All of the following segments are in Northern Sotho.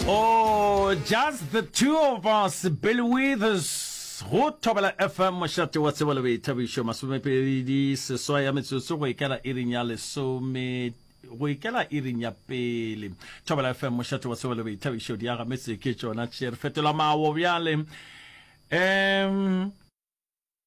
Oh, just the two of us, Billy Withers, go thobela FM mošate wa tsebo le boithabišo masomepedi seswa ya metsotso go ikela iring ya lesome go ikela iring ya pele thobela fm mošate wa tsebo le boithabišo di aga metse ke tšona tše re fetola mawo bjale um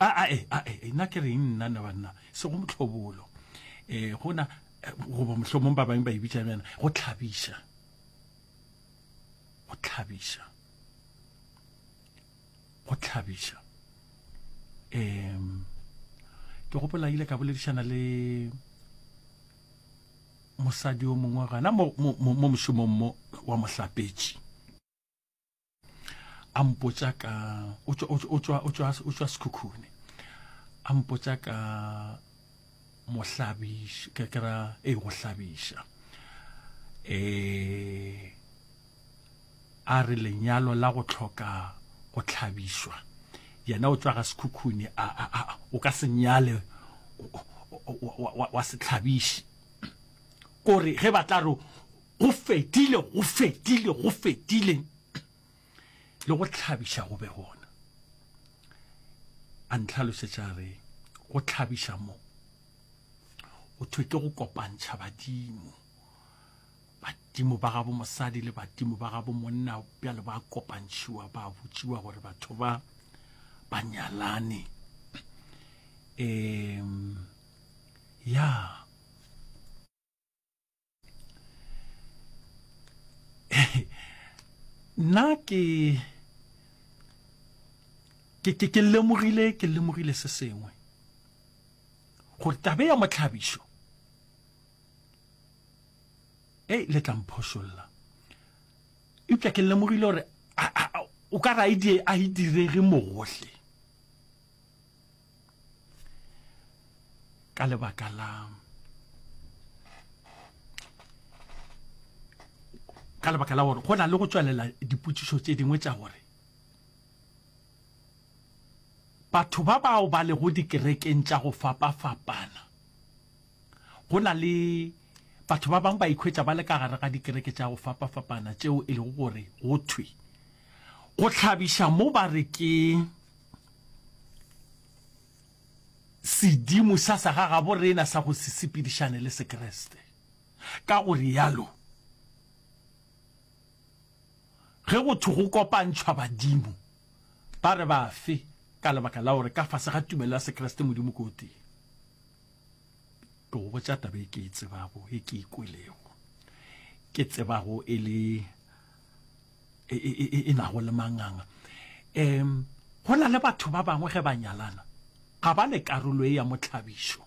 a a e a e nna ke reng nna na banna se go motlhobolo eh gona eh, goba mohlomong ba bangwe ba e bitšang yana go tlhabiša go tlhabiša go tlhabiša um ke gopola ile ka boledišana le mosadi o mongwe gana mo mo- mo- mo mošomong mo wa mohlapetši a mpotša ka o tšwa sekhukhune a mpotša ka mohlabiša ke kera e go hlabiša um a re lenyalo la go tlhoka go tlhabišwa yena o tswaga sekhukhune o ka se nyale wa setlhabiši kore ge ba tla re Go fetile, go fetile, go fetile, le go tlhabiša go be gona. A ntlhalosetša a re, go tlhabiša mo, go thwe ke go kopantšha badimo. Badimo ba gabo mosadi le badimo ba gabo monna bjale ba kopantšhiwa ba botšiwa gore batho ba ba nyalane. Um, ya. Yeah. nna ke ke ke ke lemogile ke lemogile se sengwe gore tabe ya motlhabišo e le tla mphošolla eupša ke lemogile gore o ka ra idie a e direge mogohle ka lebaka la ka lebaka la gore go na le go tswelela dipotšišo tše dingwe tša gore batho ba bao ba lego dikerekeng tša go fapa-fapana go na le batho ba bangwe ba ikhwetša ba le ka gare ga dikereke tša go fapa-fapana tšeo e lego gore go thwe go tlhabiša mo ba re ke Sedimo sa sa ga gabo rena sa go se sepedišane le Sekreste. Ka go realo, ge go thwe go kopantšhwa badimo, ba re bafe ka lebaka la gore ka fase ga tumelo ya Sekreste Modimo ke o tee? Ke go botša taba e ke e tsebago, e ke e kwelego, ke tsebago e le e, e, e, e nago le manganga um go na le batho ba bangwe ge ba nyalana ga ba le karolo e ya motlhabišo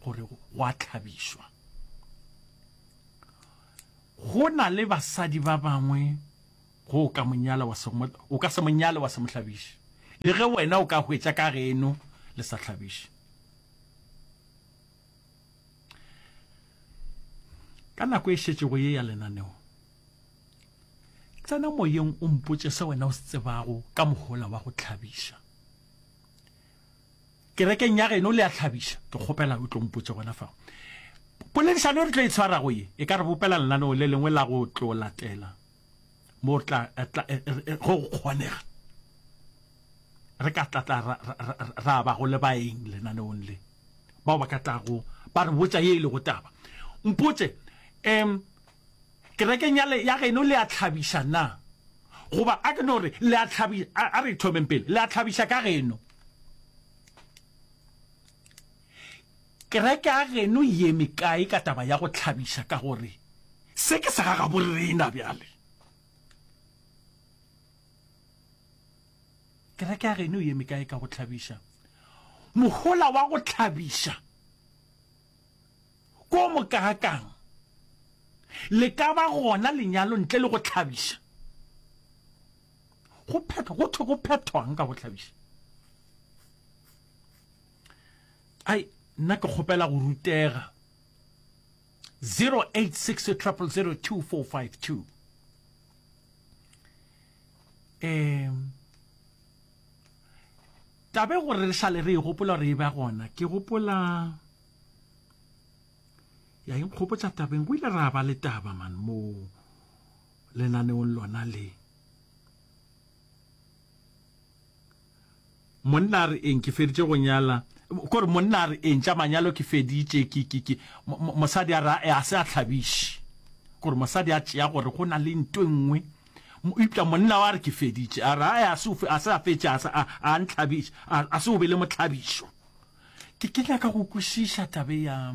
gore go a tlhabišwa go na le basadi ba bangwe go o ka monyala wa se o ka se monyale wa se mohlabiše le ge wena o ka hwetša ka geno le sa hlabiše ka nako e šetšego ye ya lenaneo tsena moyeng o mpotše se wena o se tsebago ka mohola wa go tlhabiša kerekeng ya geno le a tlhabiša ke kgopela o tlo mpotše gona fa poledišano re tlo e tshwarago ye e ka re bopela lenaneo le lengwe la go tlo latela mo tla go kgonega re ka tlatla ra ba go le baeng lenaneong le bao ba ka tlago ba re botša ye e lego taba. Mpotše, Um, kerekeng ya, le, ya geno le a tlhabiša na? Goba a ke no re, le a tlhabi, a, a re thomeng pele, le a tlhabiša ka geno? Kereke ya geno ye mekae ka taba ya go tlhabiša ka gore se ke sa ga gaborena bjale? Kereke ya geno e eme kae ka go hlabiša? Mohola wa go hlabiša ke o mokaakang? Le ka ba gona lenyalo ntle le go hlabiša? Go phethwa, go thwe go phethwang ka go hlabiša? Ai, nna ke kgopela go rutega. 086 000 2452 um tabe gore re sale re e gopola gore e ba gona ke gopola ya inkgopotsa tabeng go ile ra ba le taba man mo lenaneong lona le Monna a re eng? Ke feditše go nyala. Ko re monna a re eng? Tša manyalo ke feditše. Ke, ke, ke. Mosadi a re, a se a thlabiše. Ko re mosadi a tšea gore go na le nto e nngwe. Eupša monna wa re ke feditše. A re, a se, a se a fetše, a se a, a nthlabiša. A, a se o be le mohlabišo. Ke, ke nyaka go kwešiša taba e ya,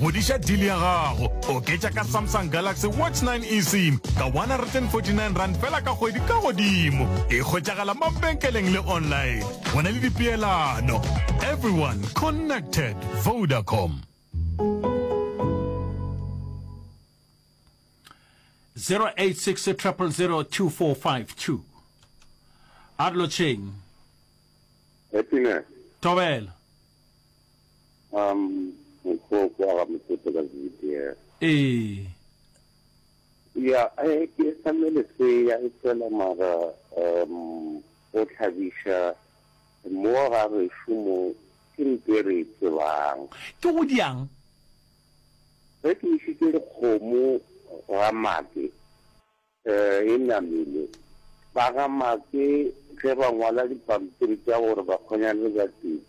Ngwadiša deal ya gago. Oketša ka Samsung Galaxy Watch 9 eSIM ka 149 rand fela ka kgwedi ka godimo. E hwetšagala mabenkeleng le online. Go na le dipeelano. Everyone connected. Vodacom. 0860002452 a re lotšheng Happiness. tobela Um, mokgwa o kwa ga mothoto ka video. Ee. Ya, eh, ke sa me lesea, e fela mara, um, go tlhabiša mo ga gešo mo, ke nto e re e tsebang. Ke go diang? Ge ke išitše dikgomo ga mate. E namile. Ba ga Make ge ba ngwala dipampiri tša gore ba kgonyane ba tee,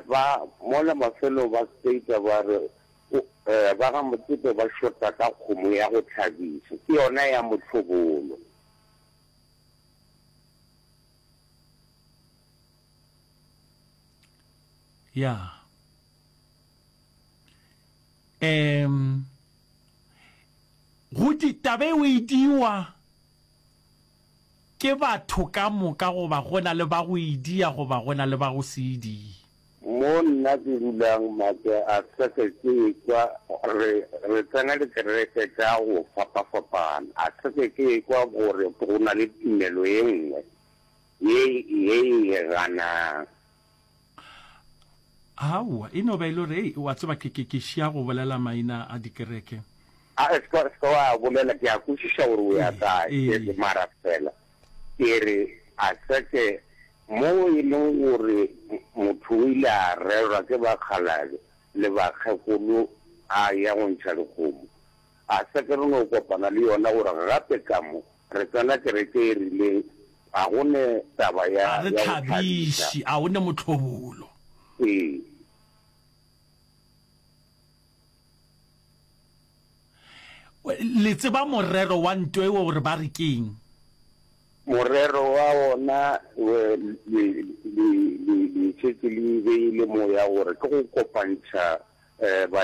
ba mola mafelong ba stater ba re ba ga Motsepe ba shota ka kgomo ya go hlabisa, ke yona ya Mohlobolo. Ya. Um. Gotee taba eo e diwa ke batho ka moka goba go na le ba go e dia goba go na le ba go se e die? Mo nna ke dulang matso a seke ke ekwa gore re tsena dikereke tša go fapafapana, a seke ke ekwa gore go na le tumelo e nngwe ye e e ganang. aowa e no ba e le gore ei wa tseba ke ke ke šia go bolela maina a dikereke a e ska ska wa bolela ke a kwešiša gore o ya Ee, kae ee. ke re mara fela ke re a seke mo e leng gore m- motho o ile a rerwa ke bakgalale le bakgekolo a ya go ntšha dikgomo A se ke re no kopana le yona gore gape ka mo re tsena kereke e rileng, ga go ne taba ya go thabiša. A o ne motlhobolo. Ee. Le tseba morero wa nto eo gore ba re keng? Morero wa ona le le le le šetše le beile moya gore ke go kopantšha ba.